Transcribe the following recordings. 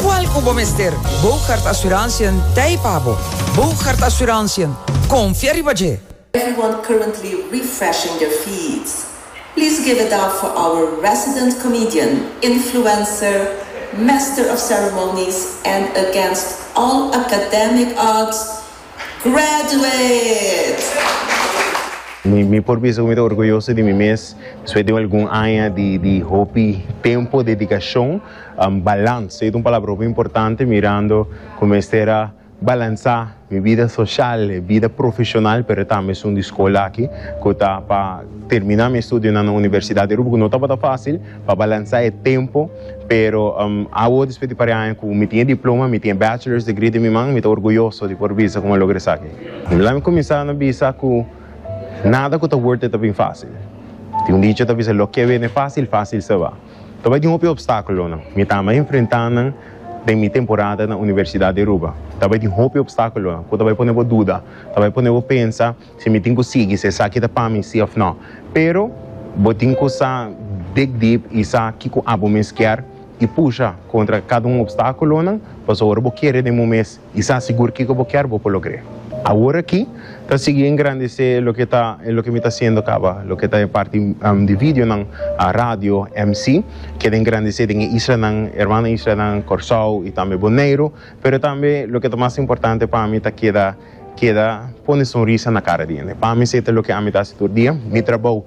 Cual cu bo mester? Boogaard Assurantiën t'ei pa bo. Boogaard Assurantiën, confia riba dje! Everyone currently refreshing their feeds. Please give it up for our resident comedian, influencer, master of ceremonies and against all academic odds, graduate! Mi por bisa cu mi ta orguyoso di mi mes despues di un algun aña di hopi tempo, dedicacion. Um balans, ey ta un palabra hopi importante mirando cu mester a balansa mi bida social y bida profesional pero tambe esun di scola aki cu ta pa termina mi estudionan na universidad di Aruba cu no tabata facil pa balansa e tempo pero um awo despues di pari aña cu mi tin e diploma mi tin e bachelors degree den mi man mi ta orguyoso di por bisa cu mi a logra esaki. Lami cuminsa na bisa cu nada cu ta worth it ta bin facil tin un dicho ta bisa lo que viene facil facil se va. Ta bai tin hopi opstakulonan. Mi ta ama enfrentá nan den mi temporada na Universidat di Aruba. Ta bai tin hopi opstakulonan ku ta bai pone bo duda, ta bai pone bo pensa si mi tin ku sigui, si esaki ta pa mi si òf nò. Pero bo tin ku sa big deep i sa kiko abo mes kier i pusha kontra kada un opstakulonan, pasobra bo kere den bo mes. I sa sigur kiko bo kier bo por logr'é. Awor aki ta sigui engrandecé loke ta e loke mi ta hasiendo caba, loke ta e parti di videonan, radio, mc. Keda engrandecé den e islanan, hermano islanan, Corsou i tambe Boneiro. Pero tambe loke ta mas importante pa mi ta keda keda pone sonrisa na cara di hende. Pa mi se ta loke ami ta hasi tur dia. Mi trabou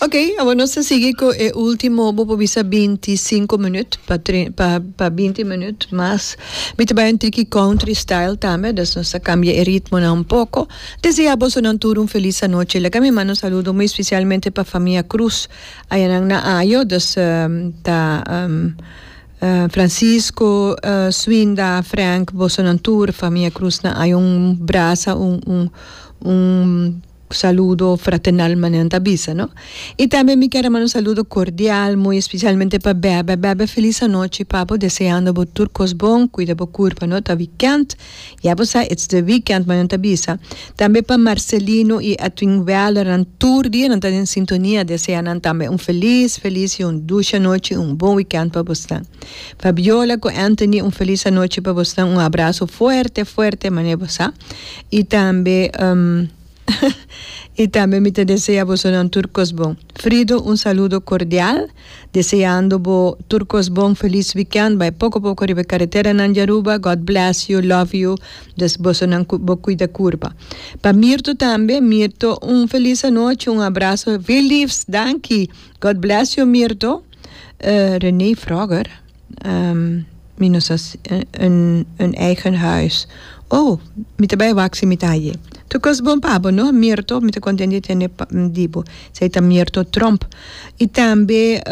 Ok, awor nos ta sigui cu e ultimo, bo por bisa binti sinku minuut pa pa pa binti minuut mas. Mi ta bai un tiki country style tambe, dus nos ta cambia e ritmonan un poco. Desea boso nan tur un feliz anochi. Laga mi manda un saludo muy especialmente pa famia Cruz ayanan na ayo, dus ta Francisco, Swinda, Frank, boso nan tur famia Cruz na ayo un brasa un un un. Cu saludo fraternal manera nan ta bisa no. Y tambe mi kier a manda un saludo cordial muy especialmente pa Bebe. Bebe feliz anochi papo deseando bo tur cos bon, cuida bo curpa no ta weekend, ya bo sa it's the weekend manera nan ta bisa. Tambe pa Marcelino y Edwin Weller nan tur dia nan ta den sintonia desea nan tambe un feliz feliz y un dushi anochi y un bon weekend pa bosnan. Fabiola cu Anthony un feliz anochi pa bosnan un abrazo fuerte fuerte manera bo sa. y tambe y tambe mi ta desea bosonan tur cos bon. Frido un saludo cordial deseando bo tur cos bon feliz weekend bay poco poco riba e carreteranan di Aruba God bless you love you dus bosonan cu bo cuida curpa pa Mirto tambe Mirto un feliz anochi un abrazo veel liefs danki God bless you Mirto Rene Froger. Mi no sa un eigen huis. Oh, mi ta bai wak si mi ta aye. Tu kos bon pa bo no, Mirto, mi ta kontent di tene di bo. Esei ta Mirto Tromp. I tambe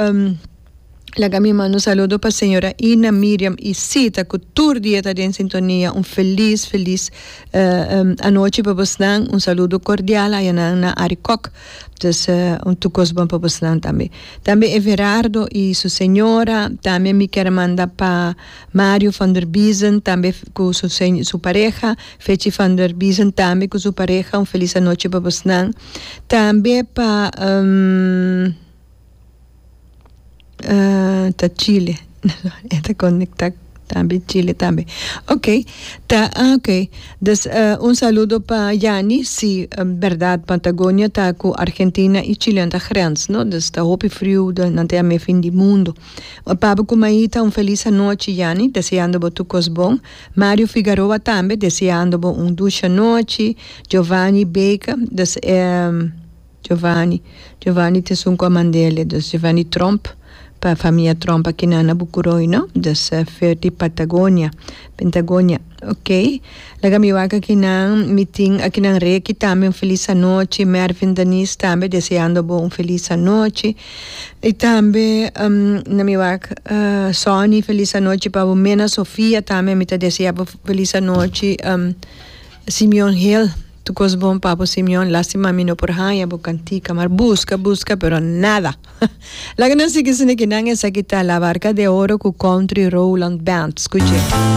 laga mi manda un saludo pa señora Ina Miriam y Sita ku tur dia ta den sintonia. Un felis, felis anochi pa bosnan. Un saludo kordial aya nan na Arikòk. Pues un tur cos bon pa bos nan tambe. Tambe Everardo y su señora, tambe mi ker a manda pa Mario van der Biesen tambe cu su seño su pareha, Fechi van der Biesen tambe cu su pareha un feliz anochi pa bos nan, tambe pa ah ta chile e ta conecta tambe chile tambe ok ta ok dus un saludo pa Yani si berdad patagonia ta cu argentina y chile anta grens no dus ta hopi frio nan ta yame fin di mundo we papu cu maita un feliz anochi Yani deseando bo tur cos bon Mario Figaroa tambe deseando bo un dushi anochi Jovani Baker. Giovanni. Giovanni ta esun cua mandele dus Giovanni Tromp pa famia Tromp aki nan na Bucuroy no dus fer di Patagonia, Pentagonia, ok. Laga mi wak aki nan mi tin aki nan rey aki tambe un feliz anochi Mervin Daniz tambe deseando bo un feliz anochi y tambe na mi wak Sonny feliz anochi pa bo Mena Sofia tambe mi ta deseabo feliz anochi Simeon Hill. Tu cos bon Papo Simeon, lastima mi no por haya bo cantica, mar busca, busca pero nada! Laga nan sigui sende ki nan esaki ta La Barca de Oro cu Country Rowland Band, scuche.